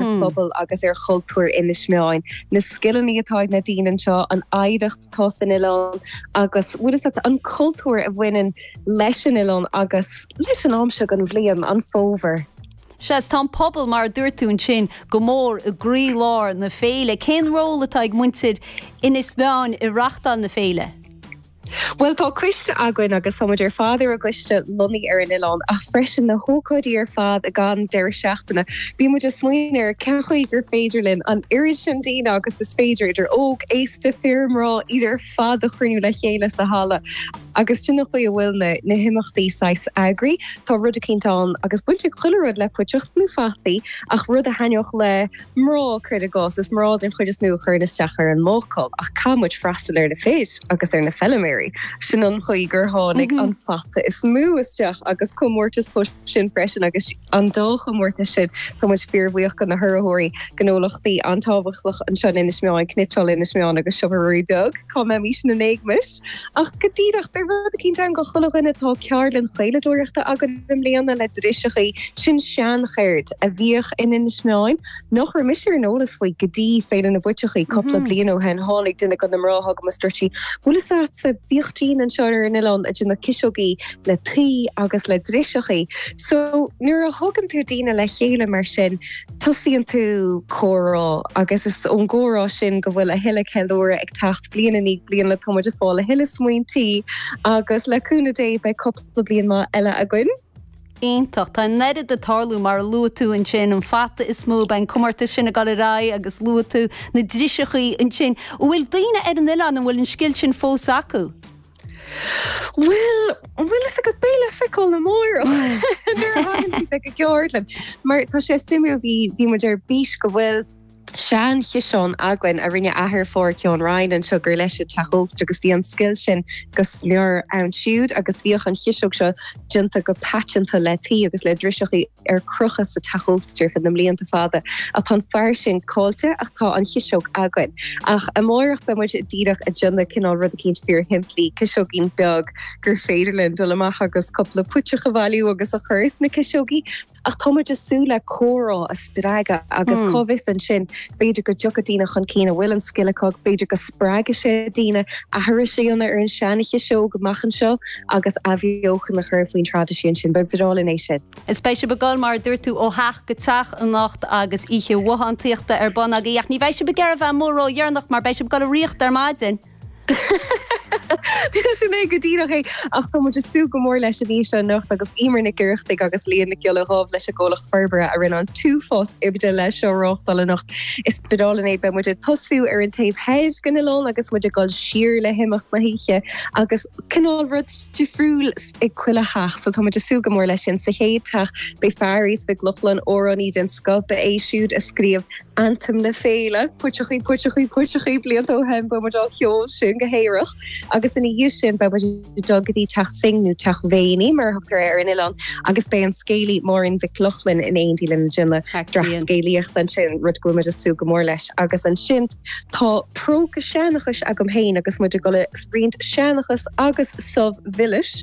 ar phobal agus ar chultúr Inis Meáin, na scileanna atá ag na daoine anseo, an oidhreacht atá san oileán agus an cultúr a bhaineann leis an oileán agus leis an am seo den bhliain, an fómhar. Sea, is tá an pobal, mar a dúirt tú ansin, go mór i gcroílár na féile. Cén ról atá ag muintir Inis Meáin i reachtáil na féile? Bhuel, tá coiste againn agus táimid ar fad ar an gcoiste lonnaithe ar an oileán ach freisin na hócáidí ar fad i gcaitheamh an deireadh seachtaine. Bíonn muid ag smaoineamh ar cén chaoi gur féidir linn an oiread sin daoine agus is féidir, idir óg, aosta, fir, mná, iad ar fad a chruinniú le chéile sa halla agus sin an chaoi a bhfuil na na himeachtaí saghas eagraithe. Tá rud eicínt ann agus baint ag chuile rud le puiteach nó fataí ach rud a thaitneodh le Mná, cuir i gcás, is mná den chuid is mó a chuireann isteach ar an mbácáil. Ach caithfidh muid freastal ar na fir freisin agus ar na feiliméaraí. Sin an chaoi gur tháinig an fata is mó isteach agus comórtas Comhshin freisin agus an dá chomórtas sin tá muid fíorbhuíoch go na hurraitheoirí, gnólachtaí an-tábhachtach, anseo in Inis Meáin, Cniotáil Inis Meáin agus Siopa Ruairí Beag. Cá mbeimis ina n-éagmais? Ach go díreach, beidh rud eicínt ann go chuile dhuine, tá ceardlann chaoladóireachta againn i mbliana le driseachaí, sin seancheird a bhíodh in Inis Meáin, nach raibh mise ar an eolas faoi go dtí Féile na bPuiteachaí cupla bliain ó shin, tháinig duine go na mná chugam is dúirt sí, bhfuil fhios a'dsa, bhíodh daoine anseo ar an oileán ag déanamh ciseogaí le tuí agus le driseachaí. So, nuair a thugann tú daoine le chéile mar sin, tosaíonn tú comhrá agus is ón gcomhrá sin go bhfuil a thuilleadh ceiliúradh ag teacht bliain i ndiaidh bliana tá muid ag fáil a thuilleadh smaointí agus le cúnamh Dé beidh cúpla bliain maith eile againn. Iontach. Tá an oiread ag tarlú mar a luaigh tú ansin, an fata is mó, beidh an comórtas sin ag dul ar aghaidh agus luaigh tú na driseachaí ansin. An bhfuil daoine ar an oileán, an bhfuil an scil sin fós acu? Bhuel, an bhfuil fhios agat beidh le feiceáil amáireach nuair a thagann siad ag an gceardlann? Mar tá sé suimiúil, bhí bhí muid ar bís go bhfuil seanchiseán againn a rinne athair Pháirceáin Ryan anseo gur leis an teach ósta agus bhí an scil sin go smior ann siúd agus bhíodh an chiseog seo déanta go paiteanta le tuí agus le driseachaí ar crochadh sa teach ósta ar feadh na mblianta fada ach tá an fear sin caillte ach tá an chiseog againn. Ach amáireach beidh muid díreach ag déanamh cinál rud eicínt fíor shimplí, ciseoigín beag gur féidir linn dul amach agus cupla puiteach a bhailiú agus a chur sna ciseogaí ach tá muid ag súil le comhrá a spreagadh agus cá bhfios ansin b'fhéidir go dtiocfaidh daoine chun cinn a bhfuil an scil acu, b'fhéidir go Spreagfaidh sé daoine aithris a dhéanamh ar an seanchas seo amach anseo agus athbheochan a chur faoin traidisiún sin. Ba bhreá linn é sin. Is beidh sibh ag dul, mar a dúirt tú, ó theach go teach anocht agus oíche bhothántaíochta ar bun agaibh. Ach ní bheidh sibh ag iarraidh a bheith amuigh ródheireanach mar beidh sibh ag dul ag ritheacht ar maidin. Sin é go díreach é. Ach tá muid ag súil go mór leis an oíche anocht agus Emer Nic Oireachtaigh agus Liadh Nic Giolla Dhuibh leis an gComhlacht Forbartha a rinne an t-uafás oibre leis seo a reáchtáil anocht. Is. B'álainn é. Beidh muid ag tosú ar an taobh thoir den oileán agus muid ag dul siar le himeacht na hoíche agus cineál rud difriúil ag chuile theach so tá muid ag súil go mór leis sin. Sa chéad teach beidh Fearghas Mac Lochlainn, amhránaí den scoth, ba é siúd a scríobh Anthem na Féile, puiteachaí puiteachaí puiteachaí blianta ó shin beidh muid á cheol sin go haerach agus ina dhiaidh sin beidh muid dul go dtí Teach Synge nó Teach Mhéiní mar a thugtar ar an oileán agus beidh an scéalaí Máirín Mhic Lochlainn in éindí linn ag déanamh dreas scéalaíochta ansin, rud go bhfuil muid ag súil go mór leis. Agus ansin tá próca seanchais agam féin agus muid ag dul ag roinnt seanchas agus subh mhilis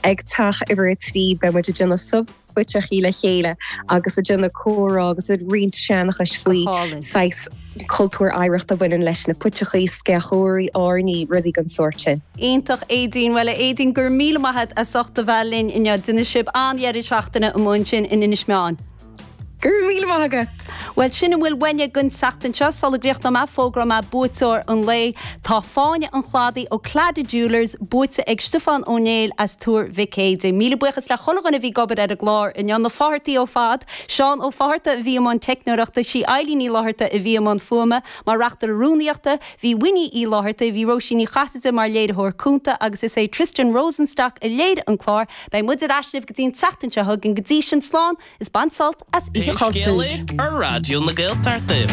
ag Teach Uimhir a Trí beidh muid ag déanamh subh puiteachaí le chéile agus ag déanamh comhrá agus ag roinnt seanchais faoi saghas cultúr oidhreacht a bhaineann leis na puiteachaí, sceachóirí, airní, rudaí den sórt sin. Iontach Aedín. Bhuel a Aedín go raibh míle maith agat as ucht a bheith linn inniu. Déanfaidh sibh an-dheireadh seachtaine amuigh ansin in Inis Meáin. Go raibh míle maith agat! Bhuel, sin a bhfuil uainne don tseachtain seo. Sula gcríochnóidh mé, fógróidh mé buaiteoir an lae. Tá Fáinne an Chladaigh ó Claddagh Jewellers buaite ag Stiofán Ó Néill as Tuar Mhic Éidin. Míle buíochas le chuile dhuine a bhí ag obair ar an gclár inniu, na Fáthartaigh ar fad, Seán Ó Fátharta a bhí i mbun teicneoireachta, sí Eilín Ní Fhlátharta a bhí i mbun fuaime mar reachtaire rúnaíochta, bhí Winnie Uí Fhlátharta, bhí Róisín Ní Chasaide mar léiritheoir cúnta agus is é Tristan Rosenstock a léirigh an clár. Beidh muid ar ais libh go dtí an tseachtain seo chugainn go dtí sin slán is bain sult as Oíche Chultúir. Pé Scéal é ar Raidió na Gaeltachta.